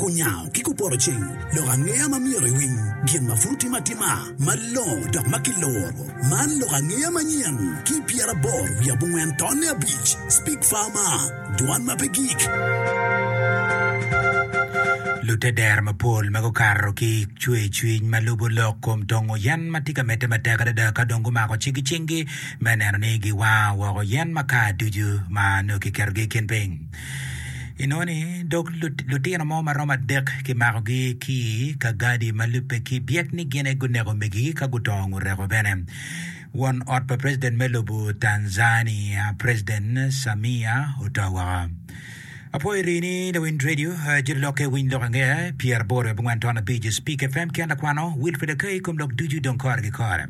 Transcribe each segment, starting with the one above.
Kunyango ki kuporo ceng lok angeya ma myero iwiny gin ma pud otime atima malongo dok ma kiloro. Man lok angeya manyen ki i pyeraboro wiye abongwen tonne abic, Speak Farmer, Dwan ma pe gik. Lute dero mapol ma gukato ki i cwer cwiny ma lubo lok kom tongo yen ma tye ka medde matek adada ka dong gumako cik i cingi me neno ni giwango woko yen maka ducu ma nongo kiketogi i kin piny. Inongo ni dog lutino mo ma romo adek kimakogi ki i ka gadi ma lubbe ki byek ni gin aye guneko omegigi ka gudongo ngureko bene. Won ot pa president me lobo Tanzania, President Samia oto woko. Apwoyo ri ni Lawiny Radio, eh, Jiri Lokke, Winy Lok Angea, pyeraboro i abongwen ton abic, Speak FM, Kien Lakwano, Wilfred Akai, kom lok ducu dong kore ki kore.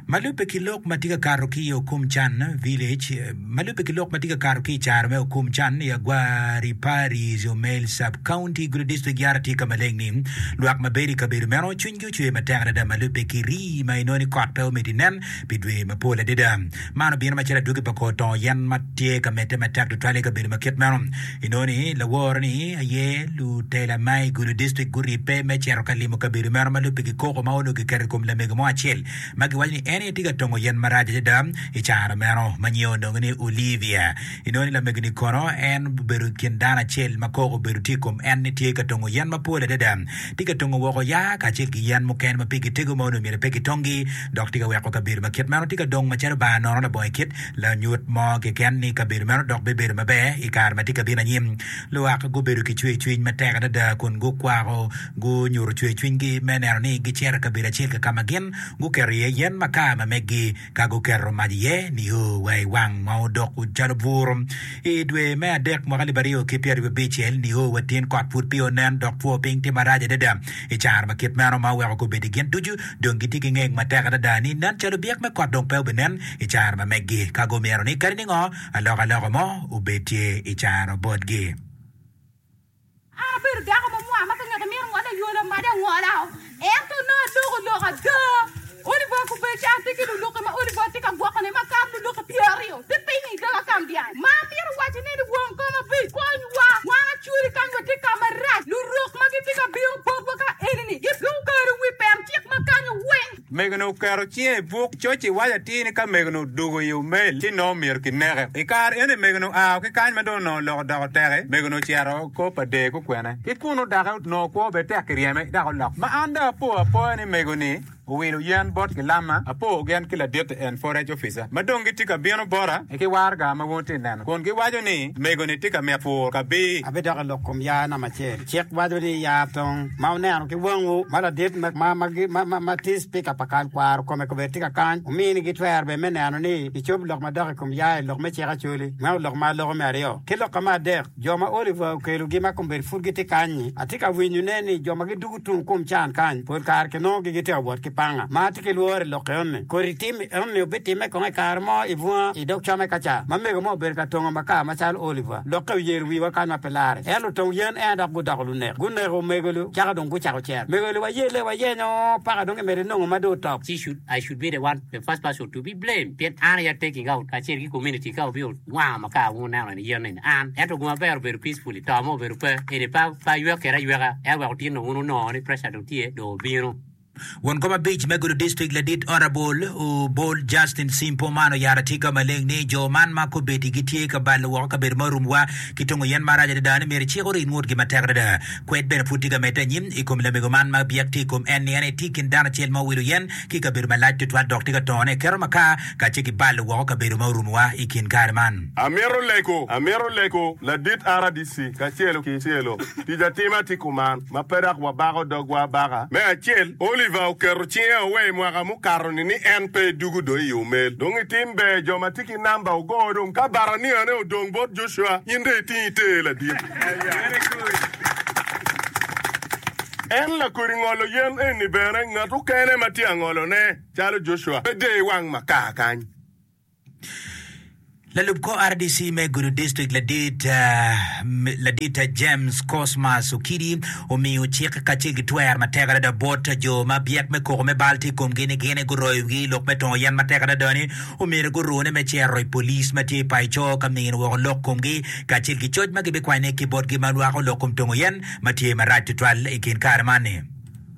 Ma lubbe ki lok ma tye ka kato ki i Okum Can Village, Ma lubbe ki lok ma tye ka kato ki i caro me Okum Can i Agwari Parish, Omel Sub-County, Gulu District yara tye ka maleng ni lwak ma bedo i kabedo meno cwinygi ocwer matek adada ma lubbe ki rii ma inongo ni kot pe omito inen pi dwe mapol adada. Man obino macalo adwogi pa kor tongo yen ma tye ka medde matek tutwal i kabedo ma kit meno. I noni, laworo-ni aye lutela ma i Gulu District guribbe me cito ka limo kabedo meno ma lupigi koko ma onongo kiketo i kom lamego mo acel ma giwaco ni en aye tye ka tongo yen marac adada i caro meno ma nyinge onongo ni Olivia. I noni, lamegoni kono en obedo i kin dano acel ma koko obedo tye i kom en ni tye ka tongo yen mapol adada, tye ka tongo woko yaa kacel ki yen mukene ma pigi tego ma onongo myero pe gitongi dok tye ka weko kabedo ma kit meno tye ka dong macalo bar nono labongo i kit Lanyut mo keken ni kabedo meno dok bibedo maber i kare ma tye ka bino anyim. Luwak gubedo ki cwercwiny matek adada kun gukwako gunyuto cwercwinygi me neno ni gicito i kabedo acel ki ka ma gin guketo iye yen makar ma meggi ka guketo mac iye nio wa i wang ma odok calo bur. I dwe me adek mwaka alip aryo ki pyeraryo abicel nio wa tin kot pud peya onen dok two piny tye marac adada i caro ma kit meno ma oweko gubeddi gin ducu dong gitye ki ngeng matek adada ni nen calo byek me kot dong pe obinen i caro ma meggi ka gumyero ni kadi ningo alokaloka mo obed tye i caro botgi. An abedo dako ma mwar ma ka ngat amito ngole aywolo amaca angola o, ento nongo aloko lok ada. Oliver Kubeci, An atye ki luluki ma Oliver tye ka gwokone ma kato luluki pyeraryo ki piny i kaka Kambiany. Ma amito waco ne ni won kom abic konywa, wan acuri kany watye ka marac. Lurok ma gitye ka bino botwa ka enini gidwong kare wi pem cik ma kanyo weng. Mego-ni oketo cinge i buk coc ci waco atir ni ka mego-ni odwogo i omel ci nongo myero kineke. I kare eni mego-ni oa ki kany ma dong onongo lok odoko teke, mego-ni ocito kop adee ki okwene. Ki kunnu doki onongo kwo bene tek ki ryeme dok olok. Ma an dong apo apoya ni mego-ni owilo yen bot gilamma, apo gen ki laditi en Forex Officer ma dong gitye ka bino bota ki waraga ma wun itye ka neno kun giwaco ni mego-ni tye ka mito pur kabir. Abidok i lok kom ya nam acel. Cik waco ni yar tong ma wuneno ki wangwu ma ladit ma tye cipika pa kal kwaro kome kobedi tye ka kany wuminigi twer bene me neno ni kicob lok madok i kom yar i lok me cik Acholi, meno lok ma aloko me aryo. Ki lok ka me adek, jo ma Oliver okelogi ma kombedi pud gitye kany-nyi, atye ka winyo nen ni jo ma gidugo tung kum can kany pol kare kinongogi gitye ka wot ki panga ma tye ki lworo i lok enoni. Kodi tim enoni obitimme kong i kare mo i bunga i dog come ka ca ma mego mo obedo ka tongo makar macalo Oliver? Lokke oyero wiwa kany mapeya. pi larre. Ento tong yen en dok gudoko lunek, guneko omego-lu, caka dong gucako cer. Omego-lu waye le wayenyo, paka dong emede nongo ma dong otop. She should, I should be the one, the first person to be blamed pien an aye taking out kacel ki community ka wubino wango ma ka wungu neno eni yen eni an. Ento gu maber obedo peacefully, to ma obedo pe, eni pe aywek kede ayweka, ento wek otin dong wun wunongo ni pressure dong tye dong obino. Won kom abic me gudo dictrict ladit Honourable Obol Justin Simpo man oyaro atika maleng ni jo man ma kobedi gitye ka balo woko kabedo ma orum wa ki tongo yen marac adada ni myero cik orit ngutgi matek adada. Kwed bene pud tye ka medde anyim i kom lamego man ma byek tye i kom en ni en aye tye i kin dano acel ma owilo yen ki kabedo malac tutwal dok tye ka tone i keto makar kacel ki balo woko kabedo ma orum wa i kin kare man. Amito lego, amito lego ladit RDC kacelo ki celo tic atima tye kuman. ma pe dok wabako dogwa abaka. Me acel, Oliver oketo cinge awe i mwaka mukato-ni ni en pe edugo dong i yo mel. Dong i tim ber, jo ma tye ki namba ogo dong ka baraniane odong bot Joshua, in dong iting ite ladit. En lakodi ngolo yen eni bene, ngat okene ma tye angolone, calo Joshua, pe deyo i wang makar kany. Lalub kor RDC me Gudo District ladit ladit James Cosmas Okidi omiyo cik kacel ki twer matek adada bot jo ma byek me koko me bal tye i komgi ni gin guroyo wigi lok me tongo yen matek adada ni omyero gurune me cero i polic ma tye i paco ka mino woko lok komgi kacel ki coc ma gibikwanyo ki botgi ma lwako lok kom tongo yen ma tye marac tutwal i kin kare man ni.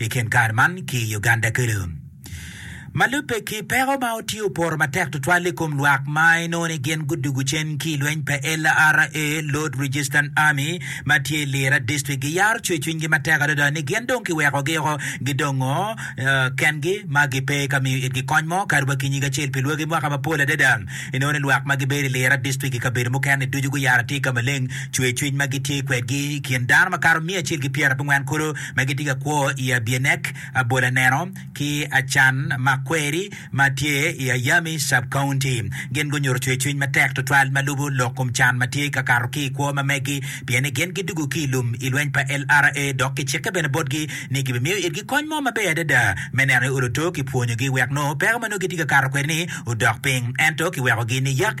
i kin kare man ki i Uganda kulu. Ma lubbe ki peko ma otye oporo matek tutwal i kom lwak ma inongo ni gin gudwogo cen ki i lweny pa LRA, Lord Resistance Army, ma tye i Lira District, giyaro cwercwinygi matek adada ni gin dong kiwekogi oko, gidongo kengi ma gipe ka miyo itgi kony mo kadi wa ki nyig acel. Pi lwagi mwaka mapol adada, inongo ni lwak ma gibedo i Lira District ki kabedo mukene-ni ducu guyaro atir ka maleng cwercwiny ma gitye kwedgi i kin dano makato miya acel ki pyerabongwen kulu. ma gitye ka kwo i Abienek, Abolaneno, ki Acan ma kweri ma tye i Ayami Sub-County. Gin gunyuto cwercwiny matek tutwal ma lubo lok kom can ma tye ka kato ki i kwo ma megi pien ni gin gidwogo ki i lum i lweny pa LRA dok kicikke bene botgi ni gibimiyo itgi kony mo maber adada me neno ni olo to kipwonyogi wek nongo peko ma nongo gitye ka kato kwede-ni odok piny. Ento kiwekogi niyak.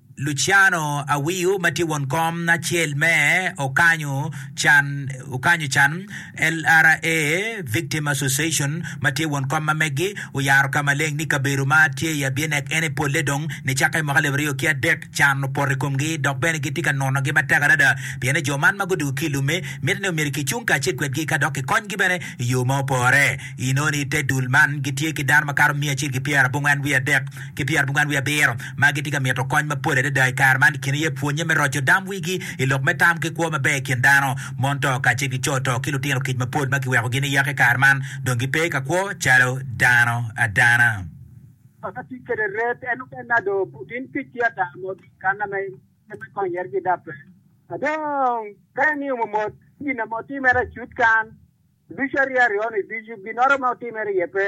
Luciano Awiu ma tye won kom acel me Okanyo Can, Okanyo Can, LRA, Victim Association ma tye won kom ma meggi oyaro ka maleng ni kabedo ma tye i Abienek ene polle dong nicakke i mwaka alip aryo ki adek can opoto i komgi dok bene gitye ka nonogi matek adada pienne jo man ma gudwogo ki i lumme miti ni omyero kicung kacel kwedgi ka dok kikonygi bene i yo ma opore. Inoni i te dul man gitye ki dano makato miya acel ki pyerabongwen wiye adek ki pyerabongwen wiye abiro ma gitye ka mito kony mapol adada i kare man i kin aye pwonnye me roco dam wigi i lok me tam ki kwo maber i kin dano, mon to kacel ki co to ki lutino kic mapol ma kiwekogi niyaka i kare man dong gipe ka kwo calo dano adana. Papa tic kwede red en ope nado putin kic ki ata mo dong kana ma en me kony yet gida pe. Dong ka en nio momot ki gin na ma otimere acut kan ducu ariya ryo ni ducu ginnoro ma otimere iye pe.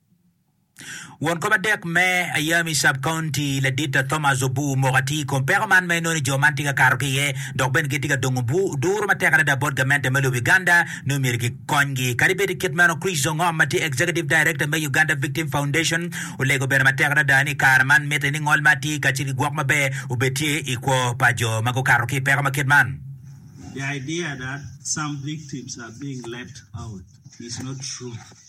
Won kop adek me Ayami Sub-County Ladita Thomas Obuu omoko atir i kom peko man ma inongo ni jo man tye ka kato ki iye dok bene gitye ka dongo duru matek adada bot gamente me lobo Uganda nongo myero gikonygi. Kadi bed i kit meno, Chris Ongom ma tye Executive Director me Uganda Victim Foundation olego bene matek adada ni i kare man mitte ni ngol ma atir kacel ki gwok maber obed tye i kwo pa jo ma gukato ki i peko ma kit man. The idea that some victims are being left out is not true.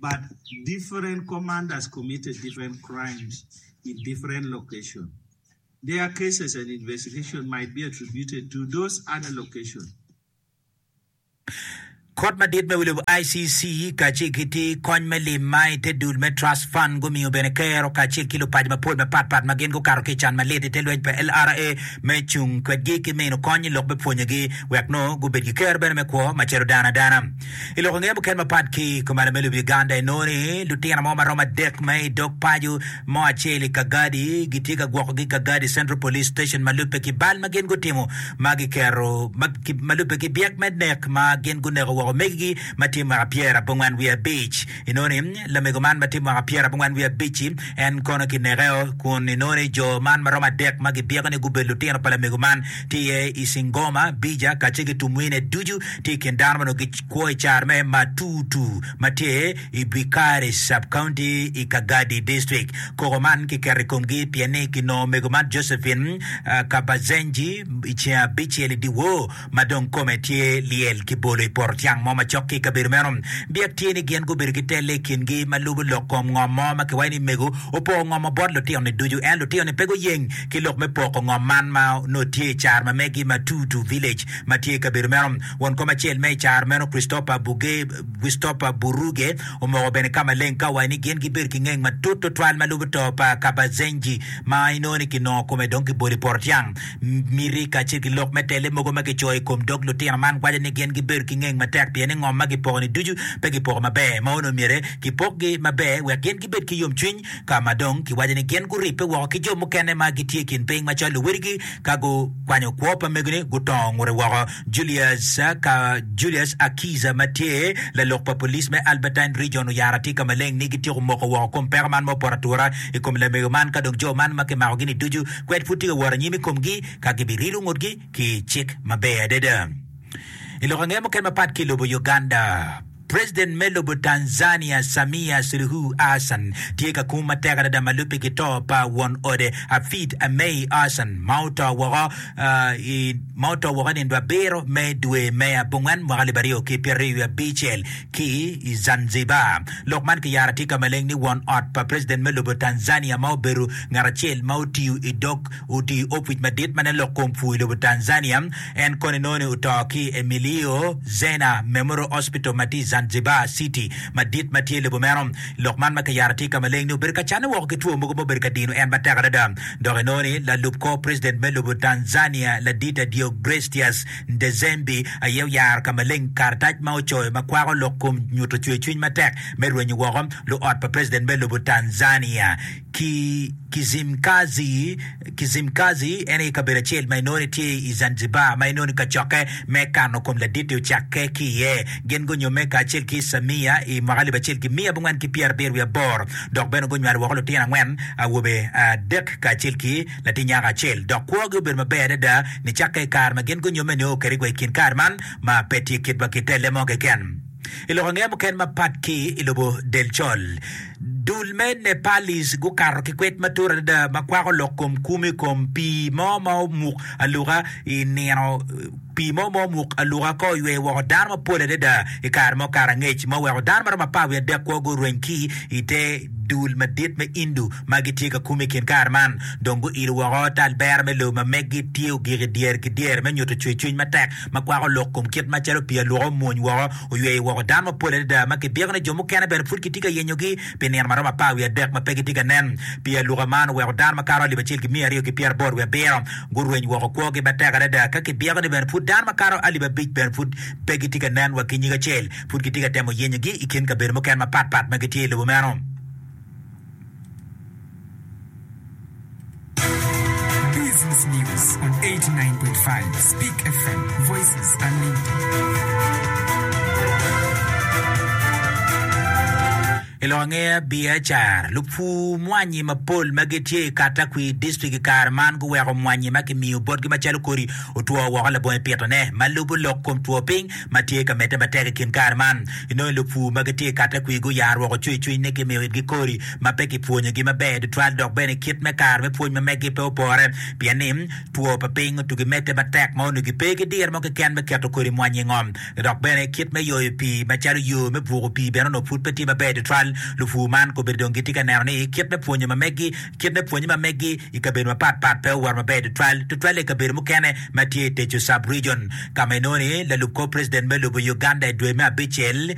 but different commanders committed different crimes in different locations. Their cases and investigation might be attributed to those other locations. Kot Madit me Wilo ICC kacel ki ti kony me lim ma i te dul me Trust Fund gumiyo bene Kero kacel ki lupaco mapol mapat pat ma gin gukato ki i can malit i te lweny pa LRA me cung kwedgi ki mino kony i lok me pwonyegi wek nongo gubed ki Kero bene me kwo macalo dano adana. I lok ange mukene mapat ki i kom alim me lubi Uganda, inongo ni lutino mo ma romo adek ma i dog paco mo acel i Kagadi gitye ka gwokogi i Kagadi Central Police Station ma lubbe ki bal ma gin gutimo ma giketo ma lubbe ki byek me nek ma gin guneko woko omegigi ma tye mwaka pyerabongwen wiye abic. Inongo ni lamego man ma tye mwaka pyerabongwen wiye abic-ci en kono kinekeo kun inongo ni jo man ma romo adek ma gibyeko ni gubedo lutino pa lamego man tye i Singoma, Bija kacel ki Tumwine ducu tye i kin dano ma onongo gikwo i car me Matutu ma tye i Bikari Sub-County i Kagadi District. Koko man kiketo i komgi pien ni kinongo omego man Josephine Kabazenji i ceng abicel i dyewor ma dong kome tye lyel ki bolo i poto tyang mo macok ki i kabedo meno. Biak tye ni gin gubedo ki telle i kingi ma lubo lok kom ngom mo ma kiwaco ni mego opoko ngom-mo bot lutino-ni ducu ento lutino-ni pe guyeng ki lok me poko ngom man ma onongo tye i car ma megi ma Tutu Village ma tye i kabedo meno. Won kom acel me i car meno Christopher Buge, Christopher Buruge omoko bene ka maleng ka owaco ni gin gibedo ki ngeng matut tutwal ma lubo to pa Kabazenji ma inongo ni kinongo kome dong kibolo i Porotyang. Miti kacel ki lok me telle mogo ma kicoyo i kom dog lutino man waco ni gin gibedo ki ngeng matek pien ni ngom ma gipoko-ni ducu pe gipoko maber ma onongo myero kipokgi maber wek gin gibed ki yomcwiny ka ma dong kiwaco ni gin guribbe woko ki jo mukene ma gitye i kin piny macalo luwedigi ka gukwanyo kwo pa megine gutongo ngute woko. Julius ka Julius Akiza ma tye lalok pa police me Albertine Region oyaro atika maleng ni gityeko moko woko kom peko man ma opoto atura i kom lamego man ka dong jo man ma kimakogi ni ducu kwed pud tye ka wot anyim i komgi ka gibirilo ngutgi ki cik maber adada. I lok ange mukene mapat ki i lobo Uganda, President me lobo Tanzania Samia Suluhu Hassan tye ka kum matek adada ma lubbe ki to pa won ode Hafidh Ameir Hassan ma oto woko i ma oto woko nindo abiro me dwe me abongwen mwaka alip aryo ki pyeraryo wiye abicel ki i Zanzibar. Lok man kiyaro atika maleng ni won ot pa president me lobo Tanzania ma obedo ngat acel ma otiyo i dog otiyo opic madit ma nen lok kom pur i lobo Tanzania En koni noni oto ki i Emilio Zena Memorial Hospital ma tye i Zanzibar City madit ma tye i lobo meno. Lok man ma kiyaro tye ka maleng ni obedo ka canne woko ki two mogo ma obedo ka dino en matek adada. Dok enoni lalub kor president me lobo Tanzania Ladita Deogrestias Ndejembi aye oyaro ka maleng karatac ma ocoyo ma kwako lok kom nyuto cwercwiny matek me rwenyo woko luot pa president me lobo Tanzania ki Kizimkazi. Kizimkazi en aye kabedo acel ma inongo ni tye i Zanzibar ma inongo ni kacokke me kano kom ladit-ti ocakke ki iye. Gin gunyume kacel ki Samia i mwaka alip acel ki miya abongwen ki pyerabiro wiye aboro dok bene gunywalo woko lutino angwen, awobe adek kacel ki latin nyako acel. Dok kwogi obedo maber adada nicakke i kare ma gin gunyume nio kadi wa i kin kare man ma pe tye kit ma kitelle mo keken. I lok ange muken mapat ki i lobo del col, Dul me Nepalese gukato ki kwed matut adada ma kwako lok kom kum i kom pii mo ma omuk aluka i nino. Pii mo ma omuk aluka ka oyweyo woko dano mapol adada i kare mo kare angec ma oweko dano ma romo apar wiye adek kwo gurweny ki i te dul madit me Indu ma gitye ka kume i kin kare man. Dong guilo woko talbera me lobo ma meggi tye ogik i dyere ki dyere me nyuto cwercwiny matek ma kwako lok kom kit macalo pii aluka omwony woko oyweyo woko dano mapol adada ma kibyeko ni jo mukene bene pud kitye ka yenyogi pi nino ma romo apar wiye adek ma pe gitye ka nen. Pii aluka man oweko dano makato alip acel ki miya aryo ki pyeraboro wiye abiro gurweny woko kwogi matek adada ka kibyeko ni bene pud dano makato alip abic bene pud pe gitye ka nen wa ki nyig acel pud kitye ka temo yenyogi i kin kabedo mukene mapatpat ma gitye i lobo meno. I lok angeya biacara, lupur mwanyi mapol ma gitye i Katakwi District i kare man guweko mwanyi ma kimiyo botgi macalo kodi otwo woko labongo i pitone. Ma lubo lok kom two piny, ma tye ka medde matek i kin kare man. Inongo lupur ma gitye i katte kwir guyaro woko cwicwiny ni kimiyo itgi kodi ma pe kipwonyogi maber tutwal dok bene kit me karo me pwony ma meggi pe opore pien ni two pa piny otugi medde matek ma onongi pe ki diro mo keken me keto kodi mwanyi i ngom. Dok bene kit me yoyo pii macalo yo me buko pii bene onongo pud pe tye maber tutwal. Lupur man kombeddi dong gitye ka neno ni kit me pwonyo ma meggi Kit me pwonye ma meggi i kabedo mapat pat pe oworo maber tutwal, tutwalle i kabedo mukene ma tye i Techo Sub-Region, ka ma inongo ni lalub kor president me lobo Uganda i dwe me abicel,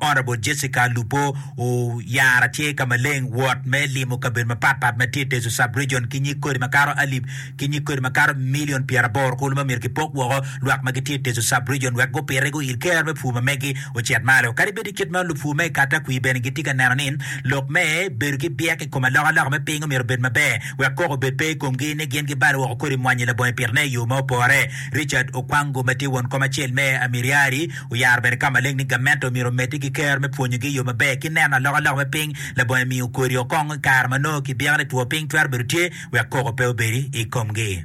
Honourable Jessica Alupo, oyara tye ka maleng wot me limo kabedo mapat pat ma tye i Techo Sub-Region ki nyig kodi makato alip ki nyig kodi makato milion pyeraboro kulu ma myero kipok woko lwak ma gitye i Teso Sub-Region wek gupite gu il ker me pur ma megi ocit malo. Kadi bed i kit ma lupur me Katakwi bene gitye ka neno ni lok me bedo ki byek i kom alokaloka me piny omyero obed maber wek koko obed pe i komgi ni gin gibalo woko kodi mwanyi labongo i pitone i yo ma opore. Richard Okwango ma tye won kom acel me Amiriari oyaro bene ka maleng ni gamente omyero omedde ki ker me pwonyogi i yo maber ki neno alokaloka me piny Labongo emiyo kodi okong i kare ma nongo kibyeko ni two piny twero bedo tye wek koko pe obedi i komgi.